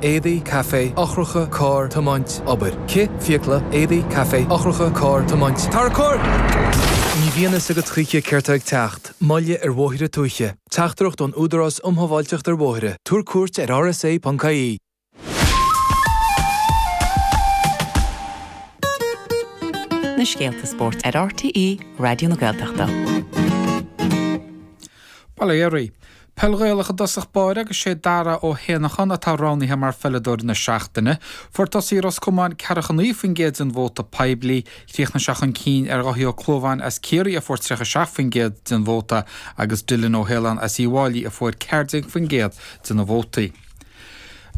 éadaí, caife, eochracha, carr, tiomáint, obair, cith, fiacla, éadaí, caife, eochracha, carr, tiomáint, tarracóir! Ní bhíonn a fhios agat choíche céard atá ag teacht, moilligh ar bhóithre tuaithe, teachtaireacht ón Údarás Um Shábháilteacht ar Bhóithre, tabhair cuairt ar rsa.ie! na scéalta spóirt ar RTÉ Raidió na Gaeltachta. Peil Ghaelach i dtosach báire agus sé Dara Ó hÉanacháin atá roghnaithe mar Pheileadóir na Seachtaine. Fuair tosaí Ros Comáin ceathracha a naoi faoin gcéad den vóta poiblí. Chríochnaigh sé chun cinn ar Dhaithí Ó Clúmháin as Ciarraí a fuair triocha seacht faoin gcéad den vóta agus Dylan Ó hAoláin as Uíbh Fhailí a fuair ceathair déag faoin gcéad de na vótaí.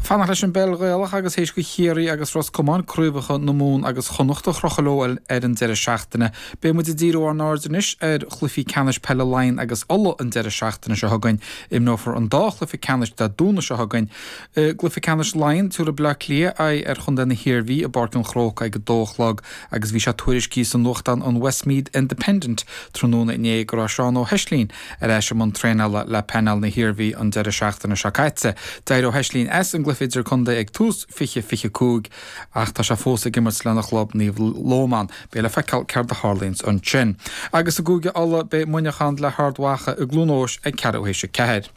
Fanacht leis an bpeil Ghaelach agus théis do Chiarraí agus Ros Comáin craobhacha na Mumhan agus Chonnacht a chrochadh leo ar an deireadh seachtaine, beidh muid ag díriú ár n-aird anois ar chluichí ceannais peile Laighean agus Uladh an deireadh seachtaine seo chugainn. Imreofar an dá chluiche ceannais Dé Domhnaigh seo chugainn. I gcluiche ceannais Laighean, tabharfaidh Bleá Cliath aghaidh ar chontae na hIarmhí i bPáirc an Chrócaigh ag a dó a chlog agus bhí sé tuairiscithe sa nuachtán an Westmeath Independent tráthnóna inné go raibh Seán Ó hEislín Ar ais i mbun traenála le Painéal na hIarmhí an deireadh seachtaine seo caite, d'éirigh Ó hEislín as an gcluiche idirchontae ag tús 2025 ach tá sé fós ag imirt lena chlub Naomh Lomán. Beidh le feiceáil céard a tharlaíonns ansin. Agus i gCúige Uladh, beidh Muineachán le hArd Mhacha i gCluain Eois ag ceathrú théis a ceathair.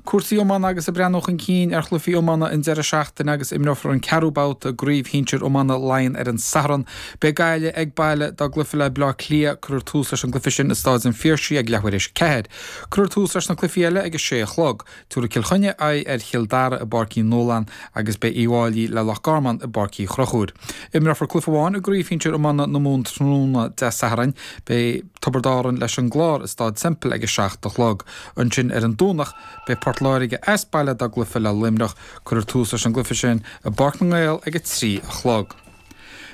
Cúrsaí Iomána agus ag breathnú chun cinn ar chluichí iomána an deireadh seachtaine agus imreofar an ceathrú babhta i gCraobh Shinsir Iomána Laighean ar an Satharn. Beidh Gaillimh ag baile dá gcluiche le Bleá Cliath. Cuirfear tús leis an gcluiche sin i Stáid an Phiarsaigh ag leathuair théis a ceathair. Cuirfear tús leis na cluichí eile ag a sé a chlog. Tabharfaidh Cill Chainnigh aghaidh ar Chill Dara i bPáirc Uí Nualláin agus beidh Uíbh Fhailí le Loch Garman i bPáirc Uí Chruchúir. Imreofar cluiche amháin i gCraobh Shinsir Iomána na Mumhan tráthnóna Dé Sathairn. Beidh. Tiobraid Árann leis an gClár i Stáid Semple ag a seacht a chlog. Ansin ar an Domhnach beidh Port Láirge as baile dá gcluiche le Luimneach. Cuirfear tús leis an gcluiche sin i bPáirc na nGael ag a trí a chlog.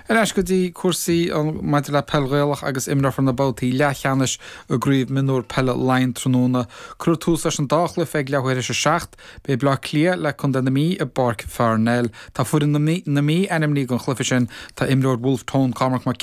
Ar ais go dtí cúrsaí an maidir le peil Ghaelach agus imreofar na babhtaí leathcheannais i gCraobh Mionúr Peile Laighean tráthnóna. Cuirfear tús leis an dá chluiche ag leathuair théis a seacht. Beidh Bleá Cliath le Contae na Mí i bPáirc Pharnell. Tá foireann na Mí ainmnithe don chluiche sin. Tá imreoir Wolfe Tone, Cormac Mac.